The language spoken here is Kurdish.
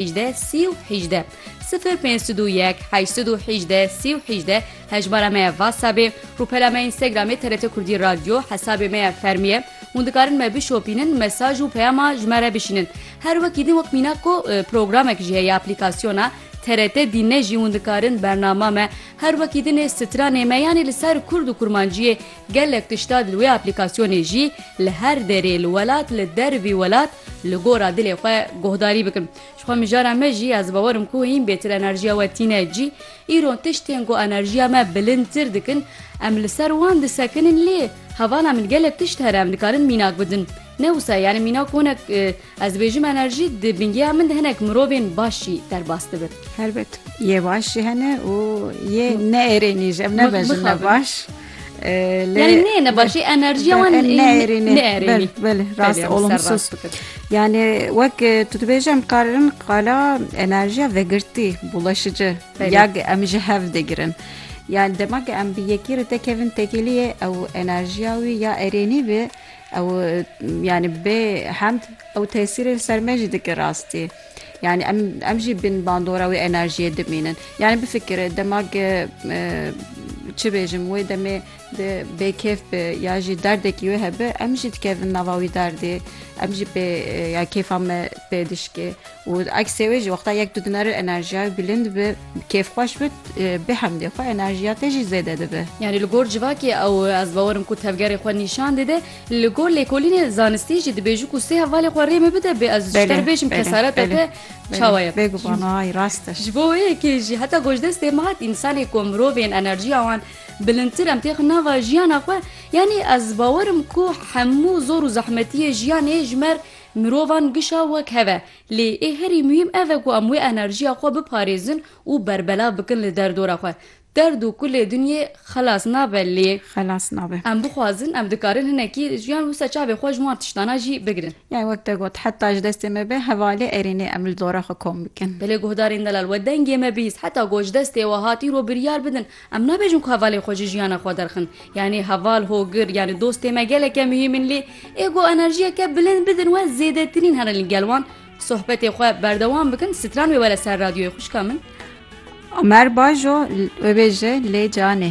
hîjdeh sî û hîjdeh sifir pênc sud û yek heşt sud û hîjdeh sî û hîjdeh hejmara me ya Whatsappê rûpela me Instagramê TRT Kurdî Radyo hesabê me ya fermî ye hûn dikarin me bişopînin mesaj û peyama ji me re bişînin her wekî din wek mînak ku programek jî heye aplîkasyona TRT dîn ne jî hûn dikarin bernama me her wekî dinê stranê me yanê li ser kurd û kurmanciyê Gelek tişta di wê aplîkasyonê jî li her derê li welat li der vî welat li gora dilê xwe guhdarî bikin. Ji xwe mijara me jî ez bawer im ku hîn bêtir enerjiya we tîne cî. Îro tiştên ku enerjiya me bilindtir dikin em li ser wan disekinin lê hevana min gelek tişt here em dikarin mînak bidin. Ne wisa ye yani mînak konek Ez dibêjim enerjî di bingeya min de hinek mirovên baş jî derbas dibin. Helbet yê baş jî hene û yê neêrênî jî em nebejin ne baş. Yani ne ne başê enerjiya wan neêrênî. Belê belê rast olumsuz. Yani wek tu dibêje em karirin qala enerjiya vegirtî bulaşici ya em ji hev digirin. Yani demek em bi yekî re tekevin tekiliyê ew enerjiya wî ya erênî bi Ew yanî bê hemd ew tesîrê li ser me jî dike rastî. Yanî em em jî bin bandora wê enerjiyê dimînin. Yanî bifikire dema ke çi bêjim wê demê di bêkêf bi ya jî derdekî wê hebe em jî dikevin nava wî derdê. Em jî pê ya kêfa me pê dişkê. Û eksê wê jî wexta yek tu dineri enerjiyayê bilind bi, kêfxweş bi, bi hemdê xwe enerjiya te jî zêde dibe. Yanî li gor civakê ew ez bawer im ku tevgerê xwe nîşan dide. Li gor lêkolînê zanistî jî dibêjû ku sê hevalê xwe rê min bide bê ez ji te re bêjim kesareta te çawa ye. Bêguman a rast e. Ji bo wê yekê jî heta ku ji destê min hat însanê ku mirovên enerjiya wan bilindtir em têxin nava jiyana xwe yanî ez bawer im ku hemû zor û zehmetiyê jiyanê ji me Mirovan gişa wek hev e, lê ê herî muhîm ev e ku em wê enerjiya xwe biparêzin û berbelav bikin li derdora xwe. Derd û kulê dinyê xelas nabe lê Xelas nabe. em bixwazin em dikarin hinekî jiyan wisa çavê xwe ji wan tiştanan jî bigirin. Yani wek te got heta ji destê me be hevalê erênê em li dora xwe kom bikin. Belê guhdarên delal we dengê me bihîst heta got ji destê we hat îro biryar bidin Em nabêjin ku hevalên xwe ji jiyana xwe derxin. Yanî heval, hogir yanî dostê me geleke muhîm in lê ê ku enerjiyeke bilind bidin we zêdetirîn herin li gel wan. Sohbetê xwe berdewam bikin stran wê were ser radyoyê xwişka min. Omer Bajo wê bêje lê canê.